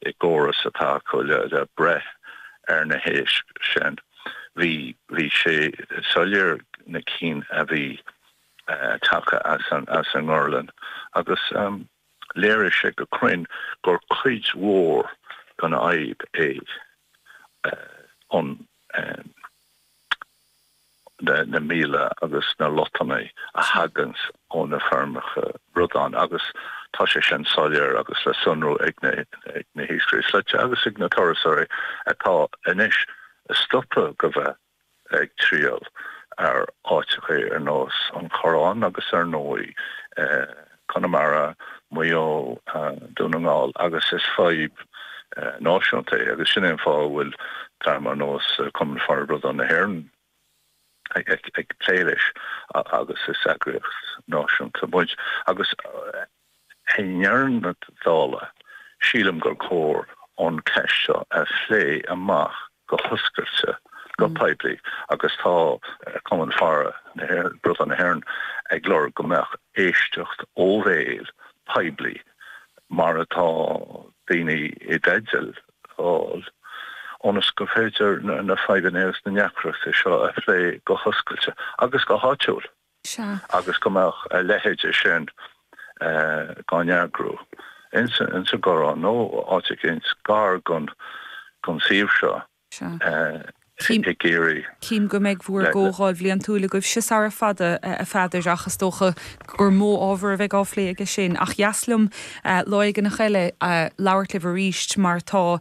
i gcóras atá acu le breith ar na héisc sin. Bhí, bhí sé soiléir na cinn a bhí tagtha as an ngorlann agus léirigh sé go cruinn gur cuid mhór den fhadhb é an na míola agus na lotannaí a thaganns ó na feirmeacha bradán agus tá sé sin soiléir agus le sonrú ag na hiascairí slaite agus ag na turasóirí atá anois stoptha go bheith ag triall ar áiteachaí ar nós an Chorráin agus ar ndóigh Conamara, Maigh Eo, Dún na nGall agus is fadhb náisiúnta é agus sin é an fáth a bhfuil dream ar nós Cumann Faire Bradán na hÉireann ag plé leis agus is eagraíocht náisiúnta muid agus i ndeireadh na dála sílim gur cóir an ceist seo a phlé amach go hoscailte, go poiblí agus tá Cumann Faire Bradán na hÉireann ag lorg go mbeadh éisteacht ó bhéal, poiblí, mar atá daoine i dteideal a fháil, ionas gur féidir na fadhbanna agus na ndeacrachtaí seo a phlé go hoscailte agus go háitiúil. Sea. Agus go mbeadh a leithide sin dá n-eagrú ins an gCorrán nó áit eicínt gar gon suíomh seo i gCiarraí. Cím go mbeidh bhúr gComhdháil Bhliantúil agaibhse sara fada, a Pheadair, ach is dócha gur mó ábhar a bheidh á phlé aige sin. Ach ba dheas liom lá éigin eile labhairt libh aríst mar tá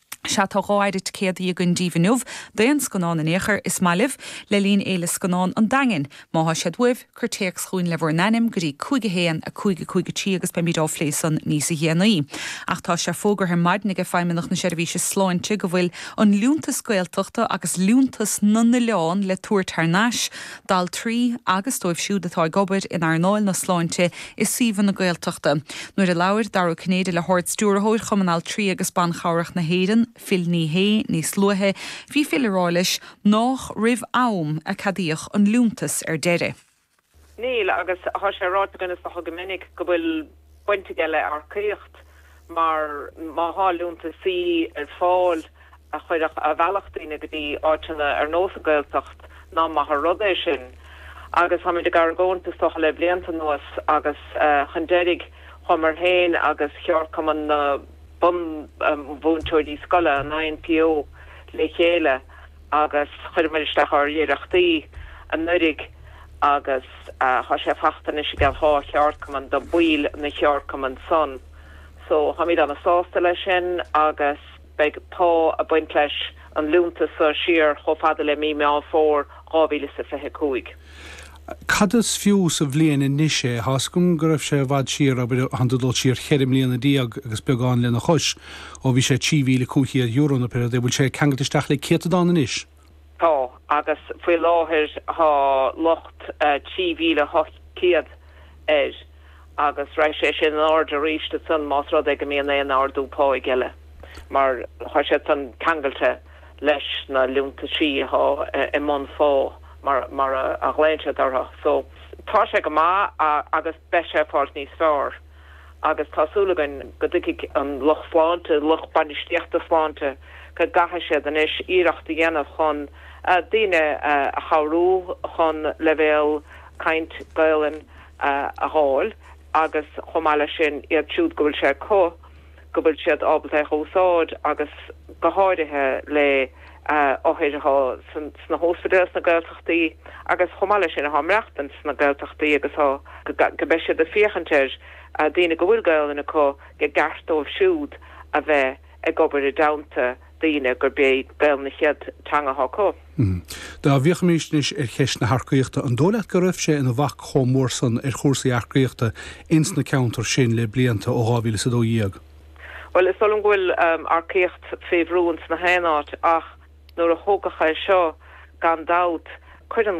Sea, tá dhá phéire ticéadaí againn díbh inniu, d'aon scannán in aon chor, is maith libh, le linn Fhéile Scannán an Daingin. Má thá siad uaibh, cuir téacs chugainn le bhur n-ainm go dtí 515 53 agus beimíd á phlé san níosa dhéanaí. Ach tá sé fógartha ar maidin aige Feidhmeannach na Seirbhíse Sláinte go bhfuil an Liúntas Gaeltachta agus Liúntas na nOileán le tabhairt thar n-ais d'altraí agus dóibh siúd atá ag obair in earnáil na sláinte i suíomhanna Gaeltachta. Nuair a labhair Dara Ó Cinnéide le hArd-Stiúrthóir Chumann Altraí agus Ban Chabhrach na hÉireann, Phil Ní Sheaghdha, níos luaithe, bhí Phil ag rá leis nách roimh am a ceadaíodh an liúntas ar deireadh. Níl, agus tá sé ráite againn is dócha go minic go bhfuil baint aige le earcaíocht. mar má thá liúntaisí ar fáil a chuirfeadh, a mheallfadh daoine go dtí áiteanna ar nós an Gaeltacht ná maith an rud é sin agus táimid ag argóint is dócha le blianta anuas agus chun deiridh chuamar féin agus cheardchumann na bunmhúinteoirí scoile, an INTO, le chéile. agus chuireamair isteach ár iarrachtaí anuraidh agus tá sé fachta anois i gceann dár gceardchumainn do bhaill an cheardchumainn san so táimíd ana sásta leis sin agus beidh pá ag baint leis an liúntas so siar chomh fada le mí Meán Fómhair 2025. Cad is fiú sa bhliain anois é? Tá's agam go raibh sé i bhfad siar, abair, ach tá dul siar cheithre bliana déag agus beagán lena chois, ó bhí sé €3,500 nó pé rud é. Bhfuil sé ceangailte isteach le céatadán anois? Tá, agus faoi láthair tá luach €3,800 air. agus raghaidh sé sin in airde arís ansan más rud é go mbíonn aon ardú páigh eile, mar tá sé san ceangailte leis na liúntaisí atá i mbunphá mar a ghlaonn siad orthu. So tá sé go maith agus beidh sé ag fáilt níos feárr agus tá súil againn go dtuigfidh an lucht sláinte, lucht bainistíochta sláinte go gcaithfidh siad anois iarracht a dhéanamh chun daoine a chabhrú chun leibhéal caint Gaelainn a dh'fháil agus chomh maith le sin iad siúd go bhfuil sé acu go bhfuil siad ábalta é a úsáid agus go háirithe le hothair athá sna hóspaidéil sna Gaeltachtaí agus chomh maith le sin athá ag maireachtaint sna Gaeltachtaí agus go mbeidh siad ag féachaint ar dhaoine go bhfuil Gaolainn acu i gceart dóibh siúd a bheith ag obair i dteannta daoine gur b'é Gaelainn a chéad teanga acu. Dá bhfiachfaimíst anois ar cheist na hearcaíochta, an dó' leat go raibh sé in a bhac chomh mór san ar chúrsaí earcaíochta ins na ceanntair sin le blianta ó dhá mhíle is a dó dhéag? Bhuel, is dó' liom go bhfuil earcaíocht fé bhrú ins gach aon áit, ach nuair a tógadh é seo, gan dabht, cuireann.